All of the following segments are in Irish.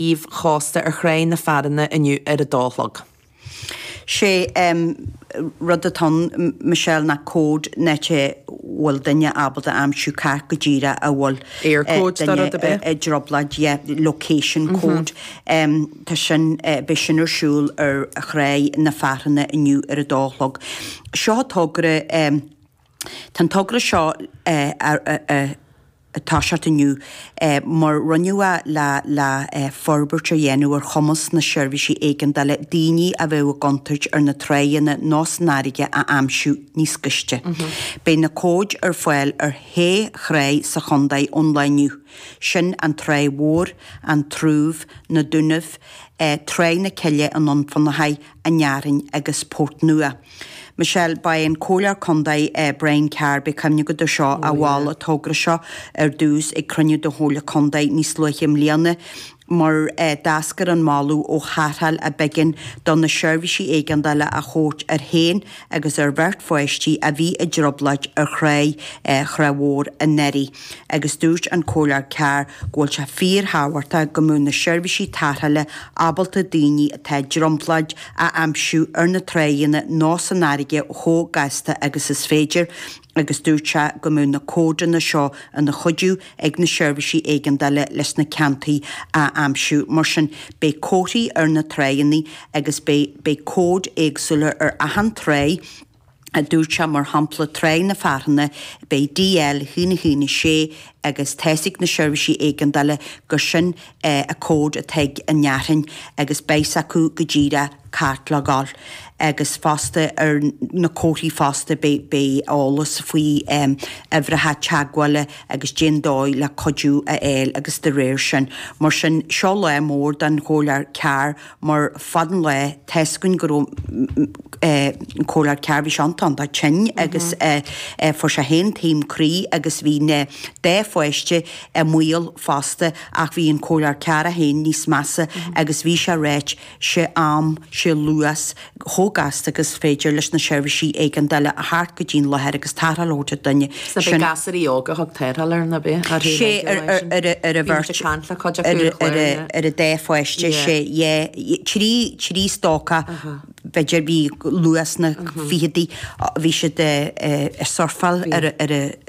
aoibh chósta ar Thráigh na Fearthanna inniu ar a dó a chlog. Sé an rud atá ann, Michelle, ná cód net a bhfuil duine ábalta a aimsiú cá háit go díreach a bhfuil duine i dtrioblóid, yeah, location code. Tá sin, beidh sin ar siúl ar Thráigh na Fearthanna inniu ar a dó a chlog. Seo togra. Tá an togra seo ag toiseacht inniu mar rinneadh é le forbairt a dhéanamh ar chumas na seirbhísí éigeandála daoine a bheadh i gcontúirt ar na tráigheanna nó san fharraige a aimsiú níos gaiste. Beidh na cóid ar fáil ar shé thráigh sa chontae ón lá inniu, sin An Tráigh Mhór, An Dumhaigh, Na Dúnaibh, Tráigh na Cille i nDún Fionnachaidh An Fhearthainn agus Port Nua. Michelle, Ba é an Comhairleoir Contae Brian Carr, beidh cuimhne agat air seo, a mhol an togra seo ar dtús ag cruinniú de Chomhairle Contae níos luaithe i mbliana mar d'eascair an moladh ó tharrtháil ab éigean do na seirbhísí éigeandála a thabhairt air féin agus ar bheirt pháistí a bhí i dtrioblóid ar Thráigh, Thráigh Mhór anuraidh. agus dúirt an Comhairleoir Carr go bhfuil sé fíorthábhachta go mbeadh na seirbhísí tarrthála ábalta daoine atá i dtrioblóid a aimsiú ar na tráigheanna nó san fharraige chomh gasta agus is féidir agus dúirt sé go mbeadh na códanna seo ina chuidiú ag na seirbhísí éigeandála leis na ceantair a aimsiú. Mar sin, beidh comharthaí ar na tráigheanna agus beidh cóid éagsúla ar achan tráigh. a dúirt sé, mar shampla Tráigh na Fearthanna, beidh DL a haon a haon a sé agus tá 's ag na seirbhísí éigeandála gur sin é an code atá ag an Fhearthainn agus beidh 's acu go díreach cá háit le ghabháil agus fosta ar na comharthaí fosta beidh beidh eolas faoi uimhreacha teagmhála agus cén dóigh le cuidiú a fháil agus de réir sin. Mar sin, seo lá mór don Chomhairleoir Carr mar fad an lae tá's againn go raibh an Comhairleoir Carr, bhí sé iontach iontach tinn agus fuair sé féin taom croí agus bhí na dá pháiste i mbaol fosta ach bhí an Comhairleoir Carr féin níos measa agus bhí sé ag ráit, sé am, sé luas, chomh gasta agus is féidir leis na seirbhísí éigeandála a theacht go dtí'n láthair agus tarrtháil a thabhairt ar dhuine. Sea, b'é gasúraí óg a thug tarrtháil air, ná b'é? Sea, ar an bheirt, ar an dá pháiste, sea, yeh. Trí stócach, b'fhéidir, bhí luath sna ficheadaí, bhí siad ag surfáil ar.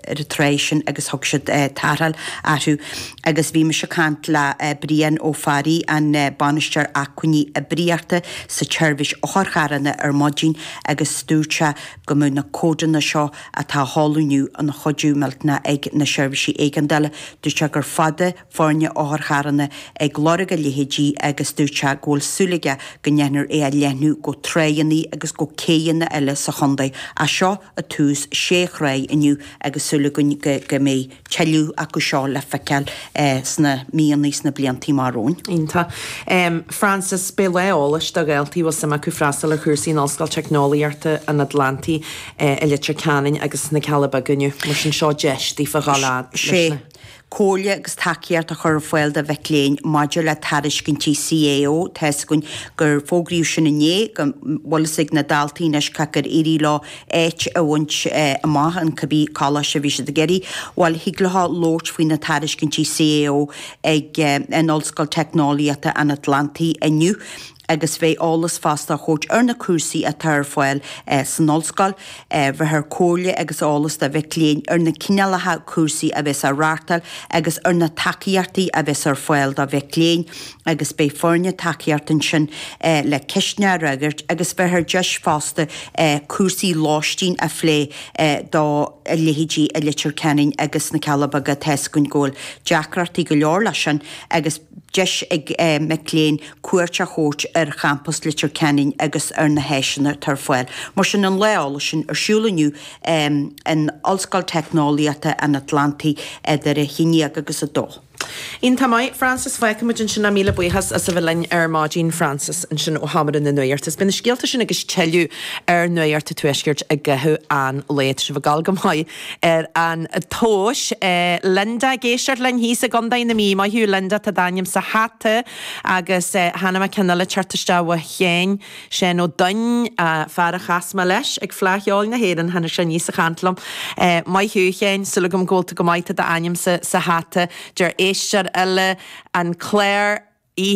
ar an tráigh sin agus thug siad tarrtháil orthu agus bhí mise ag caint le Brian Ó Fearraigh, an Bainisteoir Acmhainní Oibríochta sa tSeirbhís Otharcharranna ar maidin agus dúirt sé go mbeadh na códanna seo atá á sheoladh inniu ina chuidiú millteanach ag na seirbhísí éigeandála, dúirt sé gur fada foirne otharcharrana ag lorg a leithéidí agus dúirt sé go bhfuil súil aige go ndéanfar é a leathnú go tráigheanna agus go céidheanna eile sa chontae anseo ar dtús sé thráigh inniu agus súil agam go mbeidh tuilleadh acu seo le feiceáil sna míonnaí sna bliantaí amach romhainn. Iontach. Frances, beidh lá eolais do dhaltaí a bhfuil suim acu freastal ar chúrsaí in Ollscoil Teicneolaíochta an Atlantaigh i Leitir Ceanainn agus sna Cealla Beaga inniu. Mar sin seo deis daofa dhul a fhad leis na. Comhairle agus tacaíocht a chur ar fáil do mhic léinn maidir le tairiscintí CAO, tá a fhios againn gur fógraíodh sin inné, go bhfuil a fhios ag na daltaí anois cé acu ar éirigh leo áit a bhaint amach in cibé coláiste a bhí siad ag iarraidh. Bhuel, thig leo labhairt faoi na tairiscintí CAO ag an Ollscoil Teicneolaíochta an Atlantaigh inniu. agus beidh eolas fosta á thabhairt ar na cúrsaí atá ar fáil san Ollscoil, beifear comhairle agus eolas do mhic léinn ar na cineálacha cúrsaí a bheas á reáchtáil agus ar na tacaíochtaí a bheas ar fáil do mhic léinn, agus beidh foirne tacaíochta ansin le ceisteanna a fhreagairt agus beifear deis fosta cúrsaí lóistín a phlé do leithéidí Leitir Ceanainn agus na Cealla Beaga, tá a fhios againn go bhfuil deacrachtaí go leor leis sin agus. deis ag mic léinn cuairt a thabhairt ar champas Leitir Ceanainn agus ar na háiseanna atá ar fáil. Mar sin, an Lá Eolais sin ar siúl inniu in Ollscoil Teicneolaíochta an Atlantaigh idir 11 agus 2. Iontach maith, Frances. Fágfaimid ansin é. Míle buíochas as a bheith linn ar maidin, Frances, ansin ó Sheomra na Nuachta. Beidh na scéalta sin agus tuilleadh ar Nuacht an Tuaiscirt i gcaitheamh an lae. Tá sibh ag dul go maith. ar an tomhas. Linda ag éisteacht linn thíos i gContae na Mí. Maith thú, Linda, tá d'ainm sa hata agus tá ceann amháin eile ag teacht isteach uaidh féin, Seán Ó Duinn, fear a chas mé leis ag Fleadh Cheoil na hÉireann, tháinig sé aníos a chaint liom. Maith thú, a Sheáin, súil agam go bhfuil tú go maith, tá d'ainm sa hata, deir éisteoir eile, An Clár, i.